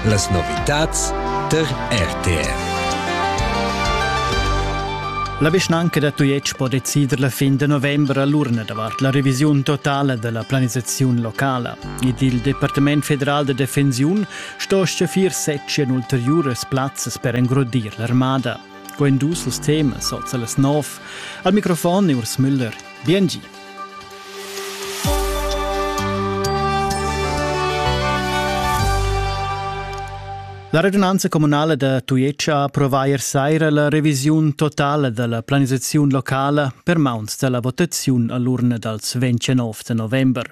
Las novitads tar RTV. La vischnanca da Tujetsch po decider la fin de novembre all'urna davart la revisiun totala della planisazione locala ed il Departement federal de defensiun sto schaffir secien ulteriuras plazzas per engrodir l'armada. Quando sul tema sozza las 9. Al microfon Urs Müller. Bien La radunanza communala da Tujetsch ha approvà ier saira la revisiun totala della planisaziun locala per mauns della votaziun all'urna dals 29 november.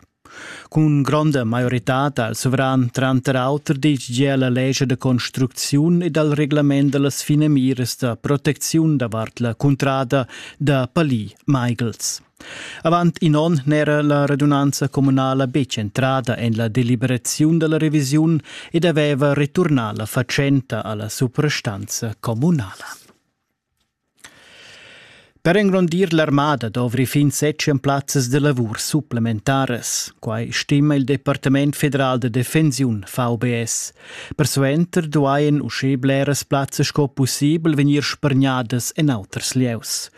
Cun gronda maioritad ha il suvran tranter auter ditg gia la lescha da construcziun e dal reglament da las finamiras da protecziun davart la cuntrada da Palì-Maighels. Avant in onn n'era la radunanza communala betg entrada en la deliberaziun da la revisiun ed aveva returnà la fatschenta a la suprastanza communala. Per engrondir l'armada dovri fin setschen plazzas da lavur supplementaras. Quai stima il Departament federal da defensiun VBS. Persuenter duain uschè bleras plazzas sco pussibel vegnir spargnadas en auters lieus.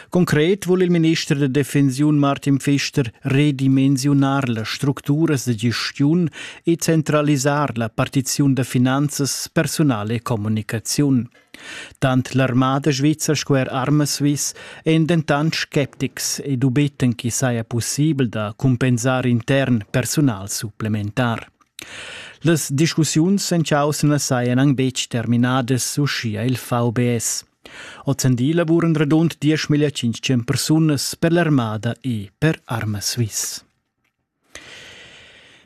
Concret vul il minister da defensiun Martin Pfister redimensiunar las structuras da gestiun e centralisar la partiziun da finanzas, personal e communicaziun. Tant l'armada svizra sco er Armaswiss èn dentant sceptics e dubiten ch'i saja pussibel da cumpensar intern persunal supplementar. Las discussiuns en chaussa sajan anc betg terminadas, uschia il VBS. Ozendi lavuran radund 10.500 persunas per l'armada e per Armaswiss.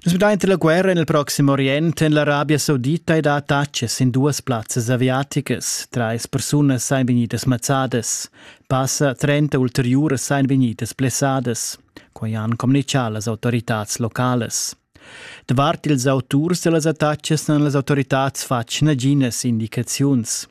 Nus vedein la guerra nel Proxim Orient en l'Arabia Saudita ed ha attaccs in duas plazzas aviaticas. Treis persunas ein vegnidas mazzadas. Passa trenta ulteriuras ein vegnidas blessadas. Quei han communicau las autoritads localas. Davart ils auturs dellas attaccs han las autoritads fatg naginas indicaziuns.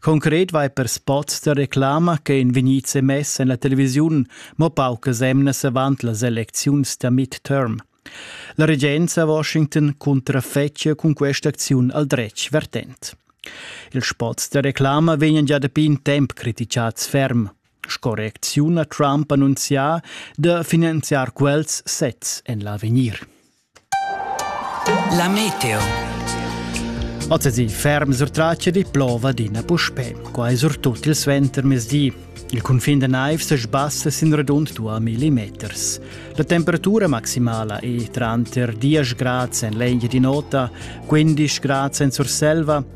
Concret vai per spots da reclama che ein vegnids emess en la televisiun mo paucas emnas avant las elecziuns da midterm. La regenza a Washington contrafetschia cun questa acziun al dretg vertent. Ils spots da reclama vegnan già dapi in temp criticads ferm. Sco reacziun ha Trump annunzià da finanziar quels sezs en l'avegnir. La meteo. Oz ferm surtrace di plova d'ina puspè. Qua è surtut il suentermezdi. Il cunfin da naiv se sbassa sin radund 2 millimeters. La temperatura maximala è tranter 10 grad en l'eglia di nota, 15 grad en Surselva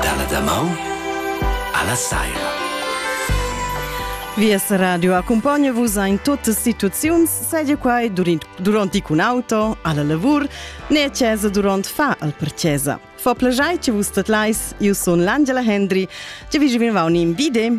Dalla damaun alla saira. Vies radio accompagna vus in tutte situazioni, sedia qua durant, durant con auto, alla lavur, né a casa durant fa al per casa. Fa plagiai che vus tatlais, io sono l'Angela Hendry, che vi venivano in vide.